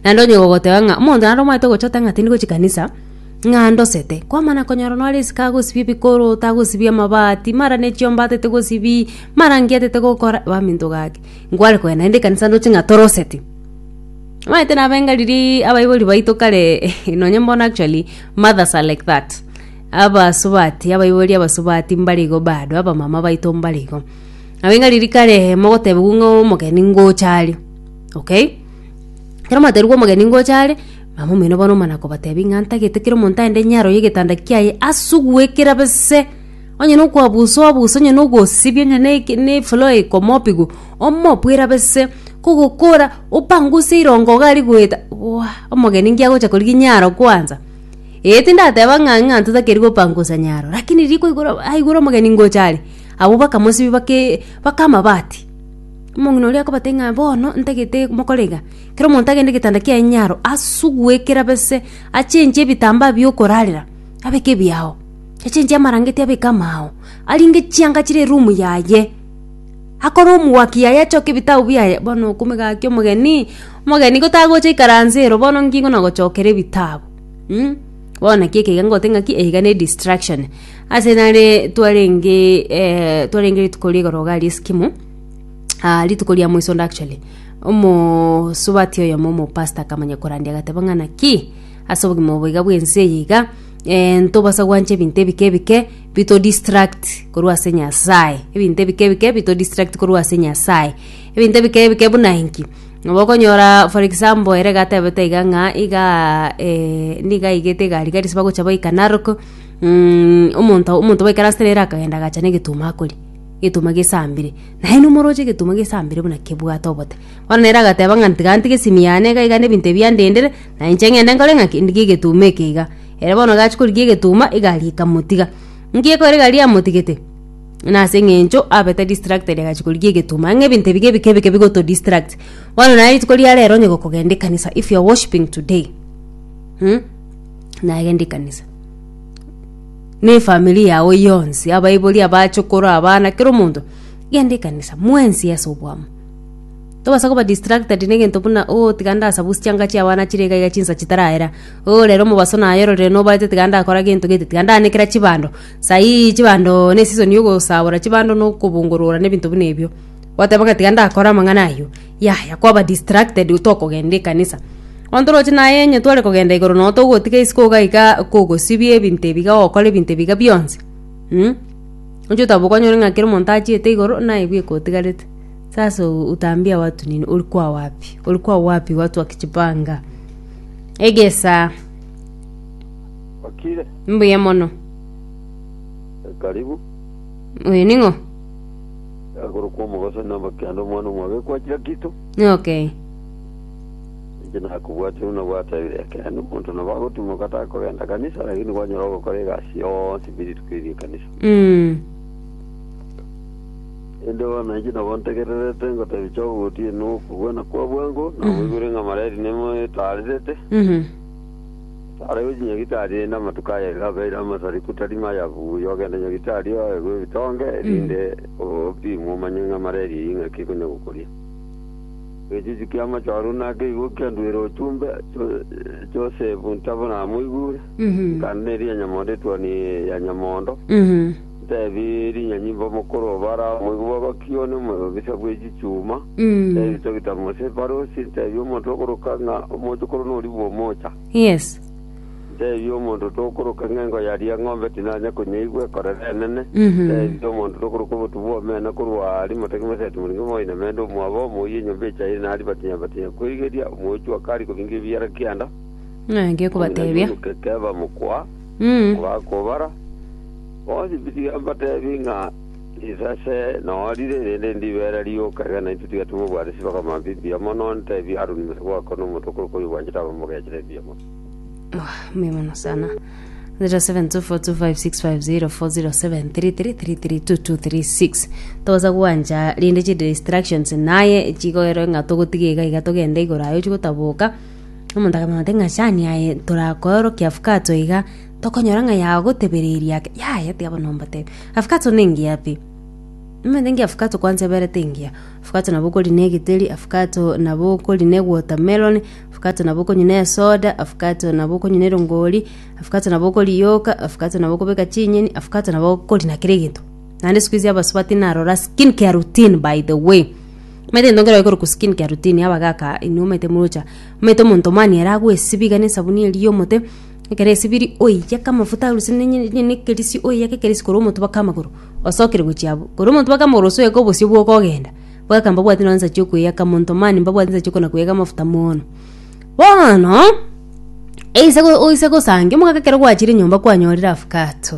Naende onye gogoteba ng'a omonto naende omanyete gochota ng'a tindi gochia kanisa, ng'a ndosete, kwamana konyora nore isiko agosibia ebikoroto, agosibia amabati, mara ne chiomba atete gosibi, mara nki atete gokora, baminto gaki, nkware kogenda naende ekanisa ndoche ng'a toroseti. Omanyete nabe enga riria abaibori baito kare nonye mbono actually mothers are like that, abasubati, abaibori abasubati mbare igo bado, abamama baito mbare igo. Nabo enga riria kare mogotebiwa ng'a omogeni ngocha are, okay. Ekero mwaterigwe omogeni ngocha are, mama omino bono omana kobatebia ng'a ntagete kera omonto aende inye aroyie egetanda kiaye asugue kerabe se, onye na okoabusa obuse, onye na ogosibia onye na eke na efloor ekomopigu, omopu erabe se, kogokora opanguse erongo iga aria goeta bwa omogeni nki agocha korigia inye aro kwanza. Eeh tindateba ng'a ng'a ntotakeri gopangusa nyaro, rakini riko igoro aigure omogeni ngocha are, abwo bakamosibia bake baka amabati. Omong'ina oria akobatebia ng'a bono ntagete mokorega, kera omonto agende getanda kiaye nyaro, asugue kerabe se, achenche ebitambaa biokorarera, abeke ebiao, achenche amarangeti abeke amaao, aringe chianga chire erumu yaye, akore omwaki yaye achoke ebitabu biaye, bono okomegakia omogeni, omogeni gotagocha ikaranse ero bono nki kona gochokera ebitabu mh, bono naki ekeiga ngote ng'aki, eyeiga ne distraction. Ase nare twarenge eh, twarenge rituko rigoro iga aria Eskimo ah, rituko ria moisondo actually omosubati oyomo omopasta akamanya korandia agateba ng'a naki ase obogima obo iga bwense eye iga eh, ntobasa gwancha ebinto ebike ebike bito distract korwa ase nyasaye ebinto ebike ebike bito distract korwa ase nyasaye ebinto ebike ebike buna inki nabo okonyora for example ere iga atebete iga ng'a igaa eh, niga aigete egari gari ase bagocha baika narok Mm, omonto omonto goikera asere ere akagenda agacha negetumo akori, egetumo gesambire. Naye nomoroche egetumo gesambire buna kebwate obote. Bono nere agateba ng'a tiga ntige esimi yane iga iga nebinto ebi andendere, na inche ng'ende nkore ng'aki, ndigie egetumo eke iga. Ere bono gachia korigia egetumo, egari ekamotiga. Nki ekore egari yamotigete? Nase eng'encho abete distracted agachia korigia egetumo. Ang'e ebinto ebi ebike ebike bigoto distract. Bono naye rituko riarero onye gokogenda ekanisa, if you are worshiping today, mm. nagendi kanisa na efamiri yago yonsi abaibori abachokoro abana kera omonto genda ekanisa mwensi ase oboamo tobasa koba distracted na egento buna o tiga ndasabu chianga chia abana chire iga iga chinsa chitarahera o rero omobaso naye ororire nobaete tiga ndakora gento gete tiga ndaanekera chibando sahii chibando ne esisoni yogosabora chibando na okobongorora na ebinto buna ebio gwateba ng'a tiga ndakore amang'ana ayio. Yaya kwaba distracted otokogenda ekanisa bono toroche naye onye tware kogenda igoro nogo togotiga isiko iga iga kogosibia ebinto ebi iga gokora ebinto ebi iga bionsi mm oche otambe kwanyora ng'a kera omonto achiete igoro naye bweka otigarete sasa utambia watu nini ori kwa wapi ori kwa wapi watu wakijipanga egesa Okire? mbuya mono Karibu. oyo ning'o Akorokwa omogoso inde omba kianda omwana omwabekwa wa kira kito. Okay. Inche nakobwatire buna gwatebire ekeene, omonto nabo agotimoka takogenda kanisa, lakini kwanyora ogokora egasi yonsi ime rituko erio ri'ekanisa. Mm. Inde bono inche nabo ntegererete ngotebi Job gotienwa okogwena kwa bwango, naboigwire ng'a mareri nemo etaarerete, Mhm. Arabwo chinyagitari rende amatuko aya iga abeire amasariku tari maya buya ogende nyagitari oegwe ebitonge erinde opimwe omanye ng'a mara eria eye ing'aki ekonya gokoria. Egechuchu ki'amache oruu nake igo kianduire ochumbe Cho- Josefu ntabwo namoigure. Nkande neri ya nyamondo etuoni ya nyamondo. Nteebie rinyanyi mb'omokoro o Barao, moigwa bw'abaki one omobisa bwe chichuma, nteebie Bitagita Mose ebarosi, nteebie omonto okoroka ng'a omochokoro norigwe omocha. Yes. Nteebie omonto tokoroka ng'a engo yaria eng'ombe tinanya konyeigwa ekorera enene, Mhm. nteebie omonto tokoroka obotu bw'omena korwa aria motaki moseti moringe moinemende omwabo omoyie enyomba echaire nari batinya batinya kwerigeria, omochwa kari kobinga ebiara kianda, Ng'ake omonene kobatebia. omonuke keba mokwa, Kobakobara, bonsi tiga mbatebi ng'a risase norire erinde ndibeera rioka, ekiagera naintwe tiga tibobwate chibaka amambia mbuya mono, ntebi Haroni mosabwa wako na omonto okorokwa oyio obwanchete abe omogechera ebiya mono. 072425604047333236 togosa gwancha rinde chiri distractions naye chigoerwe ng'a togotiga iga iga togende igoro aye ochi gotaboka Omonto akamanya ati ng'a shani aye torakoorokia Fukato iga, tokonyora ng'a yagotebereria ake, yaya tiga bono mbotebie. A Fukato nengiya pi? Omanyete engiya Fukato kwanza eberete engiya. Fukato nabo okori na egeteri, a Fukato nabo okori na ewatermelon, Fukato nabo okonywa na esoda, a Fukato nabo okonywa na erongori, a Fukato nabo okoriyoka, a Fukato nabo okobeka chinyeni, a Fukato nabo okori na kera egento. Naende sikuizi abasubati narora skin care routine by the way. Omanyete gento nkere gekorokwa skin care routine abagaka inwe omanyete morocha omanyete omonto mani ere agwesiba iga nesabuni eria yomote ekero esibiri oyiyake amafuta arusie ne- ne- ne- nekerisi oyiyake ekerisi korwa omonto mpaka amagoro osokire gochia abwo korwa omonto mpaka amagoro gose oyeke obosio bwoka ogenda abagaka mbabwati nonye nsa chiokoyiyaka monto mani mbabwati nsa chiokona koyiyaka amafuta mono bono eise go- oise gosange omogaka ekero gwachire nyomba kwanyorire afkato.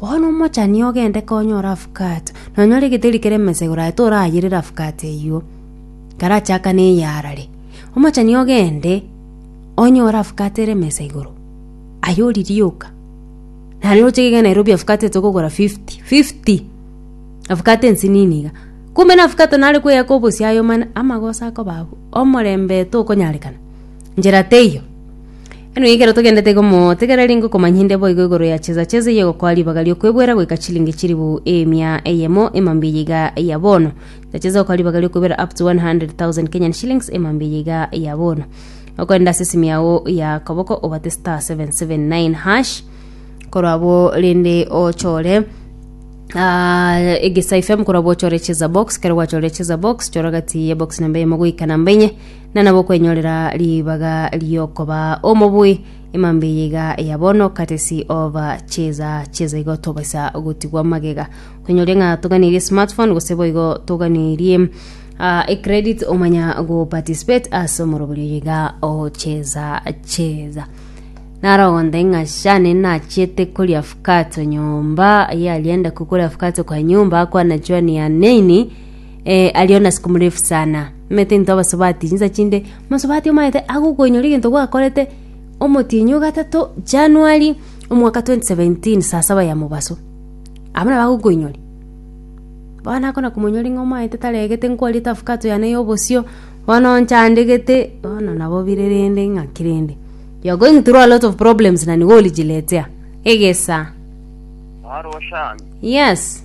Bono omochani ogende konyora afukate, nonyore egeteri kere mesegoro aye torayerere afukate eyio, karachakane eyarare. Omochani ogende onyore afukate ere mesegoro, aye oririe oka. Naende roche gege Nairobi afukate etogwa kogora fifty, fifty! Afukate ensinini iga. Kumbe na afukate nare koyaka obosie aye omana, amagoso akoba abwo, omorembe tokonyarekana, njera teiyo. Eno ekero togendete igo motigere rende okomanya inde boigo igoro ya chesa chesa eye egokoa ribaga ri'okwebwera goika chilingi chiribu emia eyemo emambia eye iga ya bono. Chesa chesa egokoa ribaga ri'okwebwera up to 100,000 Kenyan shillings emambia eye iga ya bono. Okorenda ase esimi yao ya koboko obate star 779 hash korwa abo rende ochore Ah, egesa fm korwa bochore cheza box kero gwachore cheza box chora gati ye box namba emo goika namba enye na nabo okwenyorera ribaga riokoba omobui emambe eye iga eya bono katesi ova cheza cheza igo tobaisa gotigwa magega kwenyoria ng'a toganirie smartphone gose boigo toganirie uh, e credit omanya go participate ase omoroberio iga ocheza cheza narogonde ng'a shane nachete koria fukato nyomba yalienda kukora fukato kwa nyumba kwana chwani ya neini Ee, ario nasiko murefu sana. Omanyete into abasubati chinsa chinde, omasubati omanyete agokoinyora egento gwakorete omotienyi o gatato January omwaka 2017 saa saba ya mobaso. Abana bagokoinyora. Bono akona komonyora ng'a omanyete taregete nkwariete afakato yane ya obosio, bono nchandegete, bono nabo bire rende ng'aki rende. You are going through a lot of problems na nigo orijiletea. Egesa. Mwarwo Shami, Yes.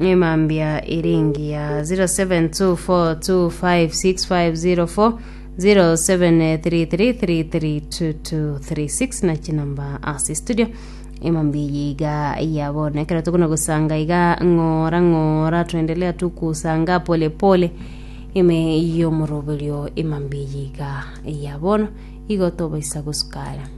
emambia ere engiya 0724256504 0733332236 na chinamba ase studio emambia eye iga yabona ekero tokona gosanga iga ng'ora ng'ora tuendelea tu kusanga pole pole ime yomoroberio emambia eye iga yabona igo tobaisa gosukara